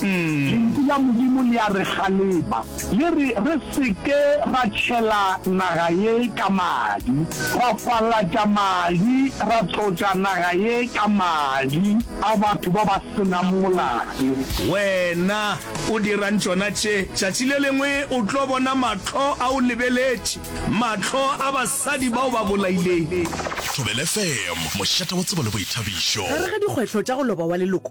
Lentšu la Modimo le a re kgalema, le re re se ke ra tšhela naga ye ka madi, ra falatša madi, ra tlotša naga ye ka madi a batho ba ba se nang molato. Wena o dirang tšona tše? Tšatši le lengwe o tlo bona mahlo a o lebeletše, mahlo a basadi ba o ba bolailego. Thobelfm, mošate wa tsebo le boithabišo. Gare ga dikgwetlho tša go loba wa leloko,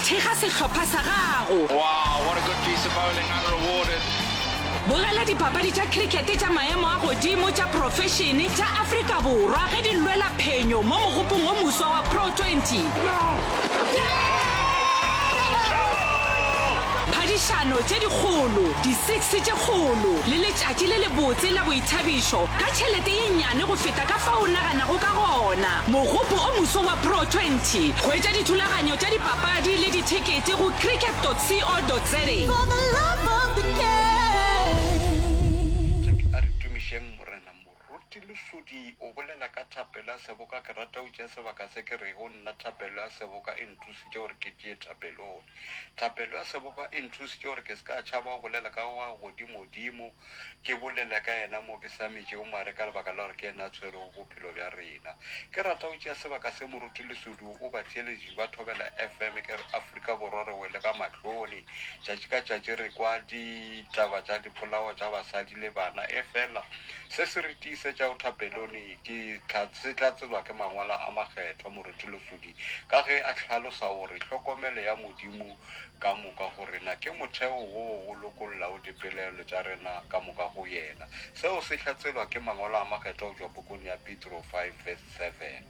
Thekga sehlopha sa gago. Wow, what a good piece of bowling, unrewarded. Bogela dipapadi tša cricket tša maemo a godimo tša profešene tša Afrika Borwa ge di lwela phenyo mo mogopong o moswa wa Pro Twenty. Phadišano tše dikgolo, di six tše kgolo le letšatši le lebotse la boithabišo ka tšhelete ye nnyane go feta ka fao o naganago ka gona. Mogopo o moso wa Pro 20. Hwetša dithulaganyo tša dipapadi le dithekete go cricket.co.za. Ke a re tumišeng Morena. Moruti Lesodi o bolela ka thapelo ya seboka, Ke rata go tšea sebaka se ke rego, Nna thapelo ya seboka e nthusitše gore ke tšee thapelong. Thapelo ya seboka e nthusitše gore ke se ka tšhaba go bolela ka ga godimodimo. Ke bolela ka Yena mo ke sa metšego mare ka lebaka la gore ke Yena a tshwerego bophelo bja rena. Ke rata go tšea sebaka se Moruti Lesodu o batheeleditše ba Thobela FM ke re Afrika Borwa re wele ka mahlone. Tšatši ka tšatši re kwa ditaba tša dipolao tša basadi le bana efela se se re tiisetšago thapelone ke se tla tsebja ke Mangwalo a Makgethwa. Moruti Lesodi ka ge a hlalosa o re hlokomelo ya Modimo ka moka go rena ke motheo woo o lokollago dipelaelo tša rena ka moka go Yena. Seo se hlatselwa ke Mangwalo a Makgethwa go tšwa pokong ya Petro 5 verse 7.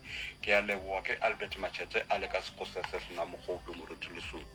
Ke a leboga, ke Albert Machete a le ka Sekgose se se na mogope, moruti lesome.